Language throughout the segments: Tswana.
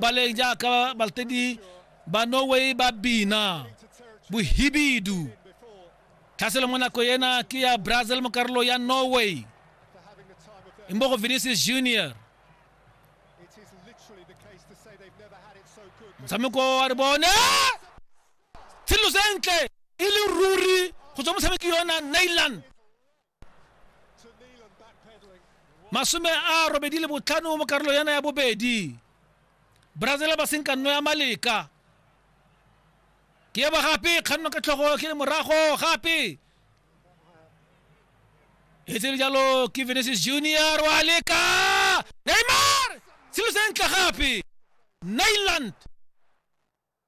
ba le jaaka balatedi ba norway ba bina bohibidu tlhaselo mo nako ena ke ya brazil mo karolo ya norway imbogo vinicius junior motshameko wa re bone tshelo sentle e le ruri go tswa motshameki yona nailand masome a robedi le botlhano mo karolo yana ya bobedi brazil ba senkanno ya maleka ke eba gape kganno ka tlhogo ke le morago gape e tsere jalo ke venesis junior wa leka neymar selo sentle gape nailand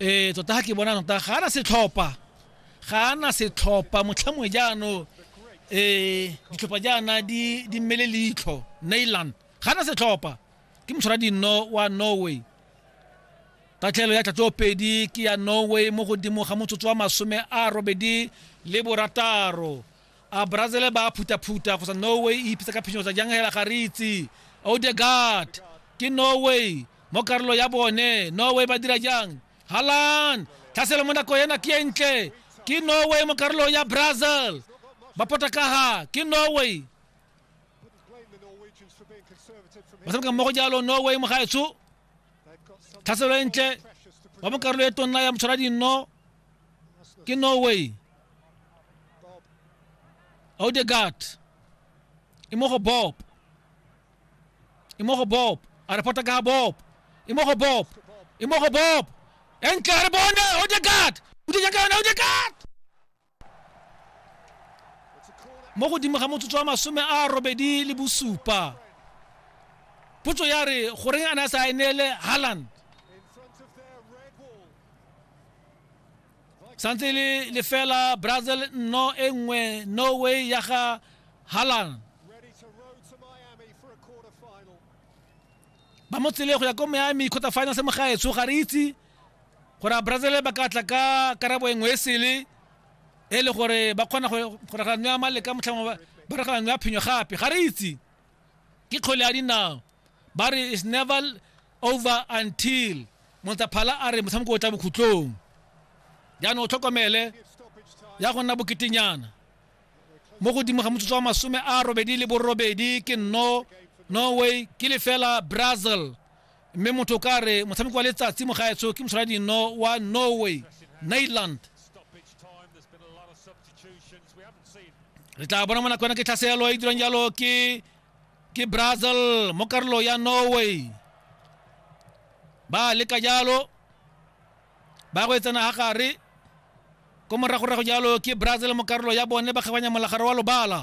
ee tota ga ke bona tota ga ana setlhopha ga ana setlhopha motlhamongwe jaanong ee ditlhopha jaana di di mmele leitlho nailand ga ana setlhopha ke motshwara dinno wa norway tatlhelo ya tlatso pedi ke ya norway mo godimo ga motsotso wa masome a robedi le borataro A Brazil ba a phutaphuta go sa Norway e ipitsa ka phinyo tsa jang hela ga re itse. Odegaard ke Norway mo karolo ya bone. Norway ba dira jang? Haaland tlhaselo mo nako ena ke e ntle. Ke Norway mo karolong ya Brazil. Ba potakaga ke Norway. Ba tshameka mmogo jalo Norway mo gaetsho. tlhaselo e ntle wa mo karolo e tonna ya motshwara dinno ke norway odegard e mo go bob e mo go bob a reporta ka ga bob e mo go bob e mo go bob e ntle a re bone odegard o dija ka yone odegard mo godimo ga motsotso wa masome a robedi le bosupa potso ya re goreng a ne a sa e neele haland santse e le lefela brazil nno e nngwe norway ya ga haland ba mo tsele go ya ko miami quarter finals mo gaetsho ga re itse gore a brazil ba ka tla ka karabo e nngwe e sele e le gore ba kgona go ragano ya maleka motlhamo ba ragano ya phenyo gape ga re itse ke kgole ya dinao ba re is never over until montaphala a re motshameko o tla bokhutlong jaanong o tlhokomele ya go nna boketenyana mo godimo ga motsotso wa masome a robedi le borobedi ke nno norway ke lefela brazil mme motho o ka re motshameko wa letsatsi mo gaetsho ke moshwara dino wa norway nailand re tla bona mo nako yona ke tlhaselo e dirang jalo ke ke brazil mo karolo ya norway ba leka jalo ba go etsana ga gare ko moragorago jalo ke brazil mo karolo ya bone ba kgabanya molagare wa lobala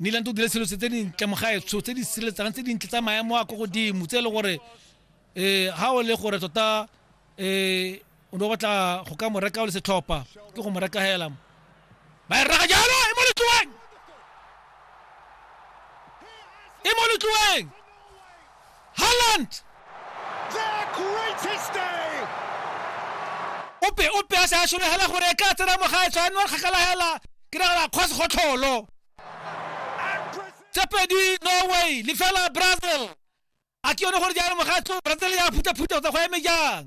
niland o dira selo se tse dintle mogaetsho tse di sireletsang tse dintle tsa maemo a ko godimo tse e le gore um ga o le gore tota um o ne o batla go ka mo reka o le setlhopha ke go mo reka hela ba e reka jalo e mo letloeng e mo letloeng Haaland! ope ope a se a solegela gore e ka tsena mogae tshwanwa kgakala hela ke nagala kgwa segotlholo tse pedi norway lefela brazil a ke yone gore jalo mogae brazil ya phuthaphutha go tsa go eme jang